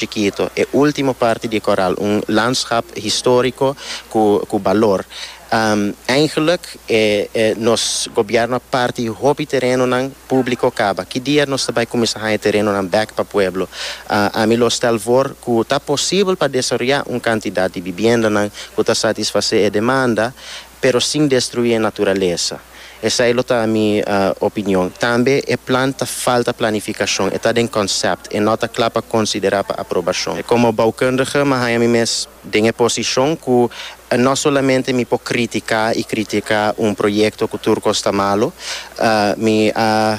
Chikito, e último parti di e kòral, un landschap históriko ku ku balor. Eingelik e nos gobièrnu a parti hopi terenonan públiko kaba. Ki dia nos ta bai kuminsá haña terenonan bèk pa pueblo? Ami lo stèl for ku ta posibel pa desaroyá un kantidat di bibiendanan ku ta satisfasé e demanda. pero sin destruí e naturalesa. Esei lo ta mi opinion. Tambe e plan ta falta planificacion, e ta den concept, e no ta cla pa considera pa aprobacion. Como boucundige mi haya mi mes den e posicion cu no solamente mi por critica y critica un proyecto cu tur cos ta malo, mi a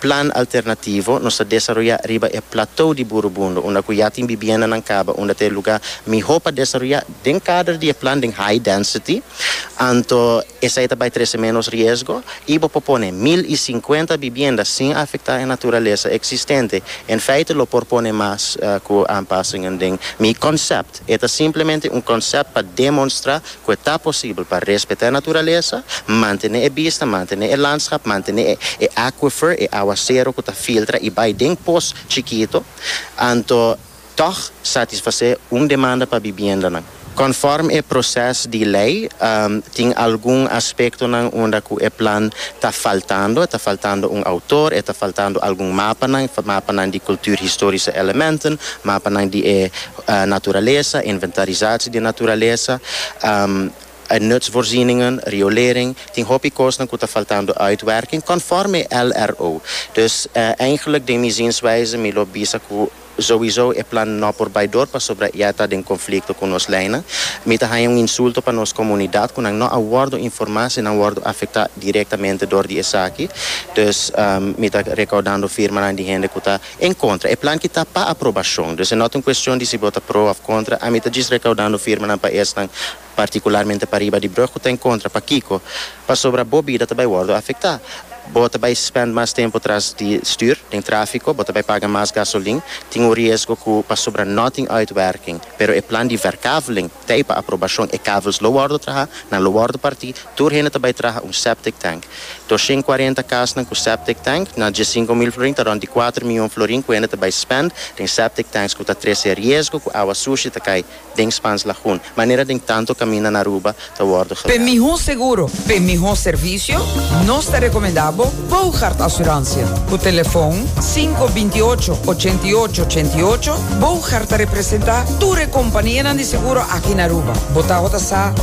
Plan alternativo nos ta desaroyá riba e Platou di Burubundo, unda ku ya tin bibiendanan kaba, unda ta e lugá mihó pa desaroyá. Den kader di e plan den high density, anto esei ta bai trese ménos riesgo i bo por pone mil i sinkuenta bibienda sin afektá e naturalesa eksistente. En feite lo por pone mas ku aanpasingen den mi konsèpt. E ta simplemente un konsèpt pa demonstrá ku e ta posibel pa respetá e naturalesa, mantené e bista, mantené e landschap, mantené e e aquifer, e awasero ku ta filtra i bai den pos chikito, anto tòg satisfasé un demanda pa bibiendanan. Kònfòrm e proses di lei, tin algun aspektonan unda ku e plan ta faltando, e ta faltando un outor, e ta faltando algun mapanan, mapanan di kulturhistorische elementen, mapanan di e. Naturalesa, inventarisatie di naturalesa, nutsvoorzieningen, riolering, tin hopi kosnan ku ta faltando uitwerking conforme LRO. Dus eigenlijk den mi zienswijze mi lo bisa ku souiso e plan no por bai door pasobra ya ta den conflicto ku nos leynan. Mi ta haña un insulto pa nos comunidad ku nan no a wordo informa si nan wordo afecta directamente door di esaki. Dus mi ta recaudando firmanan di hende ku ta. En kontra, e plan ki ta pa aprobashon. Dus e nota un kuestion di si bo ta pro òf kontra. Ami ta djis rekaudando firmanan pa esnan, partikularmente pariba di Brug ku ta en kontra. Pakiko? Pasobra bo bida ta bai wòrdu afektá. Bo ta bai spènt mas tempu tras di stür, den tráfiko, bo ta bai paga mas gasolin. Tin un riesgo ku pasobra no tin uitwerking. Pero e plan di Verkaveling ta ei pa aprobashon. E kavels lo wòrdu trahá, nan lo wòrdu partí. Tur hende ta bai traha un septic tank. Doshen kuarenta kasnan ku septic tank na diessinco mil florin ta rond di kuater miyon florin ku hende ta bai spend den septic tanks ku ta trese riesgo ku awa sushi ta kai den Spans Lagoon manera den tantu kaminda na Aruba ta wòrdu Pe gewerkt. mihó seguro, pe mihó servisio, nos ta rekomendá bo Boogaard Asuransia. Ku telefòn sinku binti ocho, ochenta i ocho, ochenta i ocho, Boogaard ta representá tur e kompanianan di seguro aki na Aruba. Bo tabata sa ku.